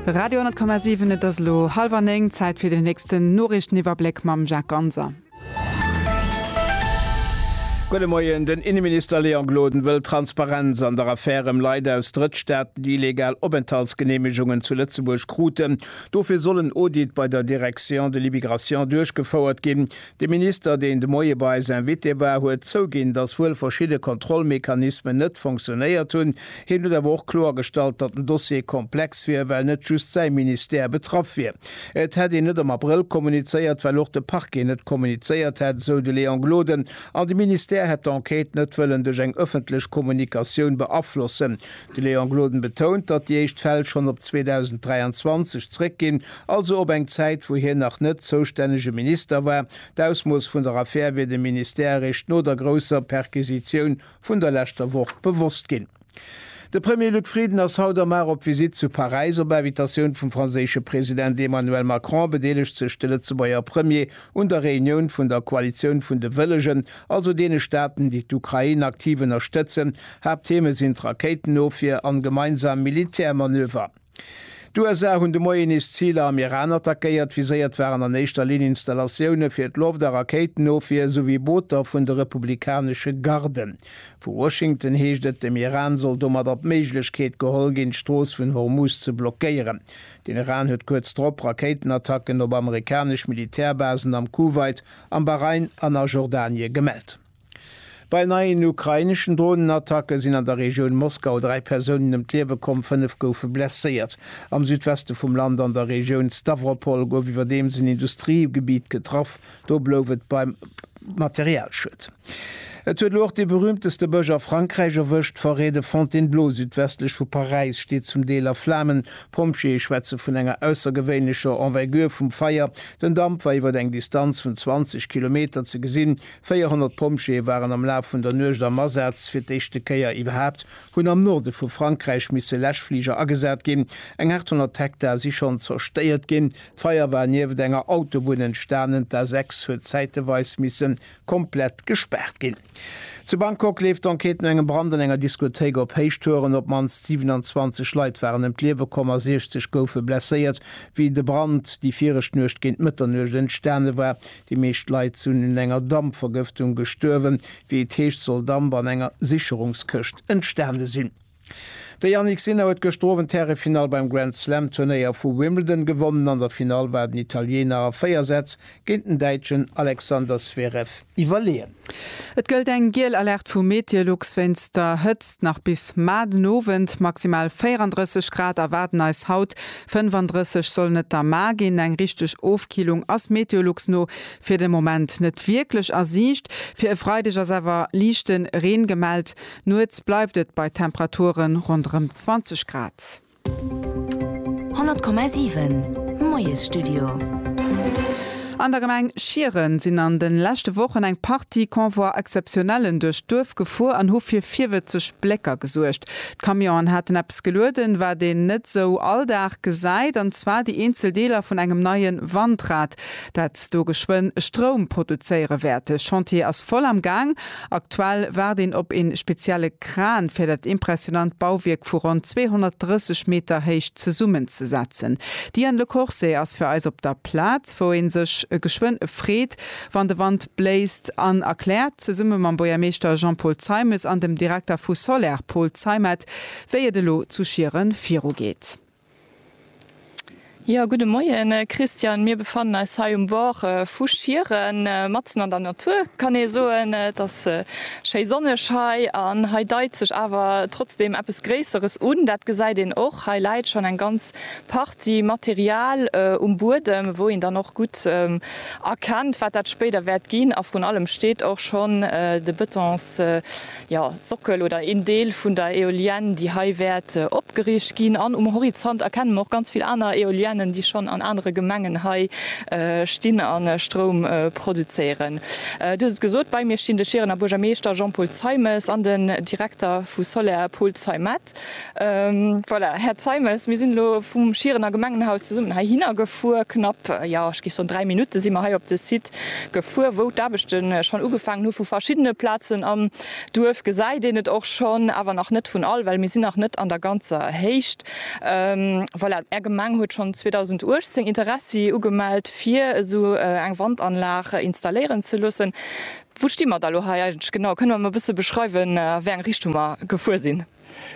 Radio 10,7 Et ass elo hallwer néng, Zäit fir den nächsten Noriichteniwwerbléck mam Jacques Ganser. Gudde Moien, Den Inneminister Léon Gloden wëll Transparenz an der Affär ëm Leit aus Drëttstaaten, déi illegal Openthaltsgeneemegungen zu Lëtzebuerg kruten. Dofir soll en Audit bei der Direction de l'immigration duerchgefouert ginn. De Minister, deen de Moie bei eis Invité war, huet zouginn, datt wuel verschidde Kontrollmechanismen net fonctionéiert hunn. Hien huet awer och kloergestallt, datt den Dossier komplex wier, well net just säi Ministère betraff wier. Et hätt een net am Abrëll kommunizéiert, well och de Parquet net kommunizéiert hätt, esou de Léon Gloden, an de Ministère hätt d'Enquête net wëllen duerch eng ëffentlech Kommunikatioun beaflossen. De Léon Gloden betount, datt déi éischt Fäll schonn op 2023 zréckginn, Also op eng Zäit, wou hien nach net zoustännege Minister war. D'Ausmooss vun der Affär wier dem Ministère eréischt no der grousser Perquisitioun vun der leschter Woch bewosst ginn. De Premier Luc Frieden ass haut am Mar op Visitt zu Paräis. Op Invitatioun vum franséische President Emmanuel Macron bedeelegt sech de Lëtzebuerger Premier un der Reunioun vun der Koalitioun vun de Wëllegen, also deene Staaten, déi d'Ukrain aktiv ënnerstëtzen. Haapttheme sinn d'Rakéitenofwier an gemeinsam Militärmanöver. D'USA hunn de Moien nees Ziler am Iran attackéiert. Viséiert waren an éischter Linn Installatioune fir d'Loft a Rakéitenofwier souwéi Booter vun de republikanesche Garden. Vu Washington heescht et, dem Iran soll domadder d'Méiglechkeet geholl ginn, d'Strooss vun Hormuz ze blockéieren. Den Iran huet kuerz drop Rakéitenattacken op amerikanesch Militärbasen am Kuwait, am Bahrain an a Jordanie gemellt. Bei neien ukraineschen Dronenattacke sinn an der Regioun Moskau dräi Persounen ëm d'Liewe komm, fënnef goufe blesséiert. Am Südweste vum Land an der Regioun Stawropol gouf iwwerdeems en Industriegebitt getraff, do blouf et beim Materialschued. Et huet elo och dee berüümteste Bësch a Frankräich erwëscht, d'Forêt de Fontainebleau südwestlech vu Paräis steet zum Deel a Flamen. D'Pompjeeë schwätze vun enger aussergewéinlecher Envergure vum Feier, den Damp war iwwer eng Distanz vun 20 Kilometer ze gesinn, 400 Pompjeeë waren am Laf vun der Nuecht am Asaz. Fir d'éischte Kéier iwwerhaapt hunn am Norde vu Frankräich misse Läschfliger agesat ginn. Eng 800 Hektar si schonn zerstéiert ginn. D'Feier war nieft enger Autobunn entstanen, d'A6 huet zäiteweis misse komplett gespaart ginn. Zu Bangkok leeft d'Enquête no engem Brand an enger Diskothéik op Héichtouren. Op d'mannst 27 Leit waren ëm d'Liewe komm a 60 goufe blesséiert, wéi de Brand déi viregt Nuecht géint Mëtternuecht entstane war. Déi meescht Leit sinn un enger Dampvergëftung gestuerwen, wéi et heescht soll Damp an enger Sicherungskëscht entstane sinn. De Jannik Sinner huet gëschter Owend d'Härefinall beim Grand Slam Turnéier vu Wimbledon gewonnen. An der Finall war den Italiener a 4 Sätz géint den Däitschen Alexander Zverev iwwerleeën. Et gëllt eng giel Alerte vu Meteolux wéinst der Hëtzt. Nach bis mar den Owend maximal 34 Grad erwaarden eis haut. 35 sollen et da mar ginn. Eng richteg Ofkillung ass Meteolux no fir de Moment net wierklech a Siicht. Fir e Freideg ass awer liichte Reen gemellt. Nuets bleift et bei Temperaturen ronderëm 20 Grad. 100,7 Moiesstudio. An der Gemeng Schieren sinn an de leschte Wochen eng Partie Convoie exceptionnellen duerch d'Duerf gefuer an hu fir virwëtzeg Blécker gesuergt. D'Camionen haten eppes gelueden, wat een net esou all Dag gesäit, an zwar déi eenzel Deeler vun engem neien Wandrad, dat do geschwënn Stroum produzéiere wäert. De Chantier ass voll am Gaang Aktuell waart een op een spezielle Kran fir dat impressionant Bauwierk vu ronn 230 Meter Héicht zesummen ze setzen. D'Diane Le Corset ass fir eis op der Plaz, wou een sech geschwënn freet wann de Wand bléist an erkläert zesumme mam Bourgermeeschter Jean-Paul Zeimes an dem Direkter vu Soler Paul Zeimet wéi et elo zu Schieren virugeet. Jo, gudde Moien Christian. Mir befannen eis hei um Bord vu Schieren, matzen an der Natur kann ee soen. Et ass schéi sonneg hei an hei deit sech awer trotzdeem eppes Gréisseres un. Dat gesäit een och, hei läit schonn eng ganz Partie Material um Buedem, wou een dann och gutt erkennt, wat dat spéider wäert ginn. A vrun allem steet och schonn de Bëtons jo, Sockel oder een Deel vun der Eolienne, déi hei wäert opgeriicht ginn. An um Horizont erkenne mer och ganz vill aner Eoliennen, déi schonn an anere Gemengen hei stinn a Stroum produzéieren. Dir hutt et gesot, bei mir stinn de Schierener Buergermeeschter Jean-Paul Zeimes an den Direkter vu Soler, Paul Zeimet. Voilà, Här Zeimes, mir sinn elo vum Schierener Gemengenhaus zesummen heihinner gefuer. Knapp, jo, ech géif soen, dräi Minutte si mer hei op de Site gefuer, wou d'Aarbechte schonn ugefaangen hu vu verschiddene Plazen am Duerf. Gesäit een et och schonn, awer nach net vun all, well mir sinn nach net an der ganzer Héicht. Voilà, Är Gemeng huet schonn 2018 Interessi ugemellt, fir esou eng Wandanlag installéieren ze loossen. Wou sti mer da lo hei eigentlech genau? Kënne mer mol e bësse beschreiwen, a wéi eng Richtung mer gefuer sinn?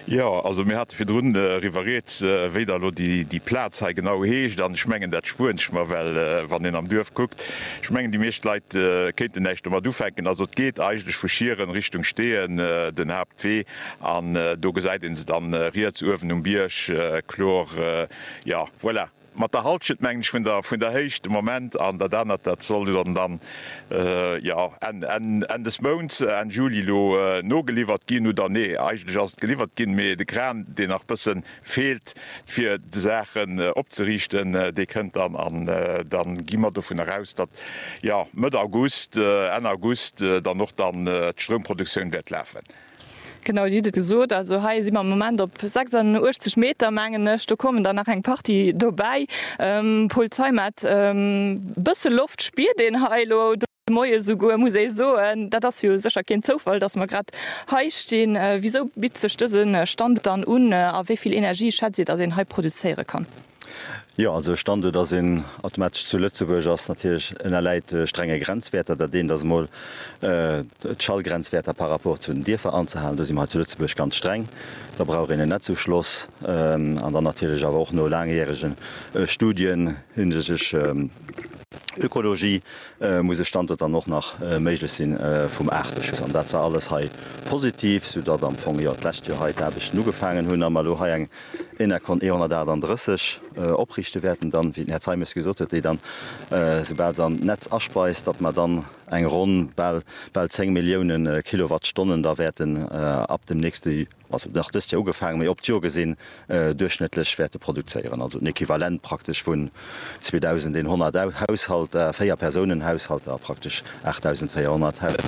Jo, also mir hate virdrun driwwer rieds, wéi da lo déi Plaz hei genau heescht. An ech mengen, dat spueren ech mer, well wann een am Duerf kuckt, ech mengen, déi meescht Leit kéinten näischt domat ufänken. Also et geet eigentlech vu Schieren Richtung Steeën den Haaptwee an do gesäit ee se dann riets uewen um Bierg kloer. Jo, voilà. Mat der Halschent mengen ech vun der Héicht de Moment an dat anert, dat soll dann jo Enn des Mounts, Enn Juli elo nogeliwwert ginn. Oder nee, eigentlech ass et geliwwert ginn, mee de Kran, deen nach e bësse feelt, fir d'Saachen opzeriichten, dee kënnt dann. An da gi mer dovun eraus, datt jo Mëtt August, Enn August dann och dann d'Stroumproduktioun wäert lafen. Genau, Dir hutt et gesot, also hei si mer am Moment op 86 Meter, mengen ech. Do kommen der nach eng Partie dobäi. Paul Zeimet, e bësse Loft spiert een hei elo de Moie souguer, muss ee soen. Dat ass jo sécher keen Zoufall, datt mer grad hei stinn. Wisou bitt sech dëse Stand dann un a wéi vill Energie schätzt Dir, datt een hei produzéiere kann? Jo, also e Standuert ass een automatesch zu Lëtzebuerg ass natierlech ënnerläit strenge Grenzwäerter. Dat eent ass emol d'Schallgrenzwäerter par rapport zu den Dierfer anzehalen. Do si mer hei zu Lëtzebuerg ganz streng. Da brauch een en Netzufloss an dann natierlech awer och no laangjärege Studien hinsichtlech Ökologie muss e Standuert dann och nach méiglech si vum Aarteschutz. An dat war alles hei positiv, soudatt am Fong jo d'lescht Joer hei d'Aarbechten ugefaangen hunn a mer elo hei eng Enercon E138 opriichte wäerten, dann, wéi den Här Zeimes gesot huet, déi dann, esoubal se an d'Netz aspeist, datt mer dann eng ronn bal, bal 10 Millioune Kilowattstonnen da wäerten ab dem nächste, also nach dëst Joer ugefaangen, mee op d'Joer gesinn, duerchschnëttlech wäerte produzéieren, also en Equivalent praktesch vun. 2.100 Haushalter, Véier-Persounen-Haushalter, praktesch 8.400 Haushalter.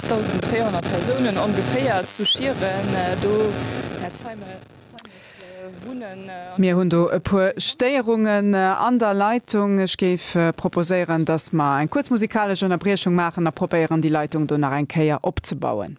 8.400 Persounen ongeféier zu Schieren, do, Här Zeimet, wunnen. Mir hunn do e puer Stéierungen an der Leitung. Ech géif proposéieren, dass mer eng kuerz musikalesch Ënnerbriechung maachen a probéieren, déi Leitung do nach eng Kéier opzebauen.